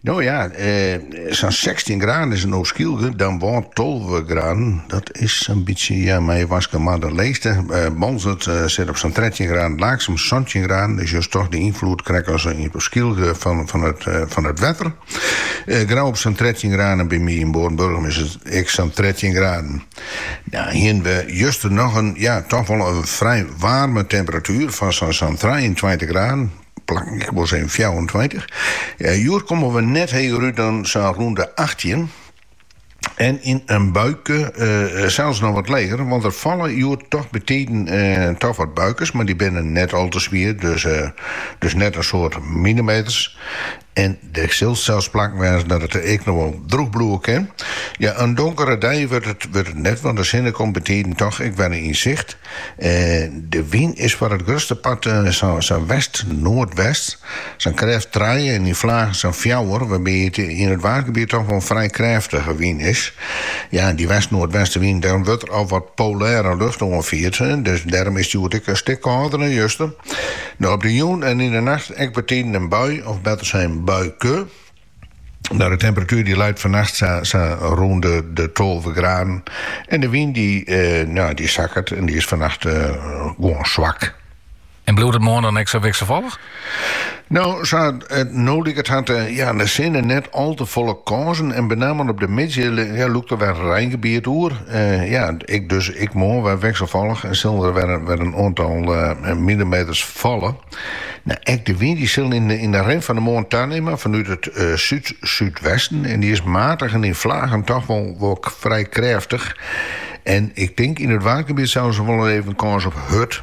No ja, sa'n 16 graden is it op Skylge, dan wol 12 graden. Dat is in bytsje, ja, mei je Wâldsein mar de leechste. Boalsert sit op sa'n 13 graden, Laaksum santjin graden, dus just troch de ynfloed krekt as op Skylge fan it wetter. Grou op sa'n 13 graden en by my yn Noardburgum is it ek sa'n 13 graden. No hiene we juster noch in, ja, toch wol in frij waarme temperatuer fan sa'n trijeentweintich graden. Plakken, ik wol sizzen fjouwerentweintich. Eh, hjoed komme we net heger út dan sa'n rûn de achttjin. En yn in buike eh, eh, sels noch wat leger, want der falle hjoed toch betiden eh, toch wat buikers, mar dy binne net al te swier, dus, eh, dus net in soad millimeters. En dêr sille sels plakken wêze dat it ek noch wol drûch bliuwe kin. Ja, ien donkere dei wurdt it net, want de sinne komt betiden toch ek wer yn sicht. De wyn is foar it grutste part sa'n west-noardwest, sa'n krêft trije en yn flagen sa'n fjouwer, wol mei yn it Waadgebiet toch wol in frij krêftige wyn is. Ja, dy west-noardwestewyn, dêrom wurdt der al wat polêre lucht oanfierd, dus dêrom is it hjoed ek in stik kâlder as juster. De op de jûn en yn de nacht ek betiden in bui, of better sein buike. Nou, de temperatuer dy leit fannacht sa, sa rûn de, de 12 graden. En de wyn dy, eh, nou, dy sakket en dy is fannacht eh, gewoon zwak. En bliuwt it moarn dan ek sa wikselfallich? No, sa't no liket hat ja, de sinne net al te folle kânsen en benammen op de middei ja, lûkt der wer in reingebiet oer. Ja, ek dus ek moarn wer wikselfallich en sille der wer in oantal millimeters falle. Nou, ek de wyn dy sil yn de rin fan de moarn tanimme fanút it súd-súdwesten en dy is matich en yn flagen toch wol wol frij krêftich. En ik tink yn it Waadgebiet sels wol even kâns op hurd.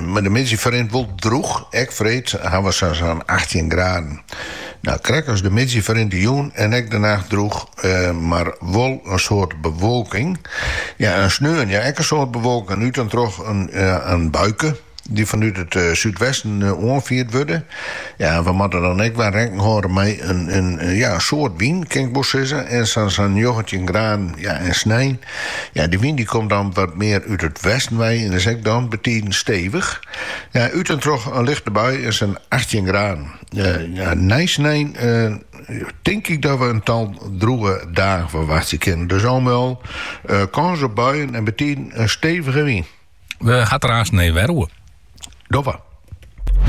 Mar de middei ferrint wol drûch, ek freed hawwe we sa'n achttjin graden. No, krekt as de middei ferrint de jûn en ek de nacht drûch, mar wol in soad bewolking. Ja, en sneon, ja, ek in soad bewolking en út en troch in buike dy't fanút it súdwesten oanfierd wurde. Ja, en we moatte dan ek wol rekken hâlde mei in soad wyn, kin ik wol sizze, en sa'n njoggentjin graden. Ja, en snein. Ja, de wyn die komt dan wat mear út it westen wei en is ek dan betiden stevich. Ja, út en troch in lichte bui en sa'n achttjin graden. Eh, ja, nei snein eh, tink ik dat we in tal droege dagen ferwachtsje kinnen. Dus al mei al eh, kans op buien en betiden in stevige wyn. We ha it der aanst noch wer oer. Doffe.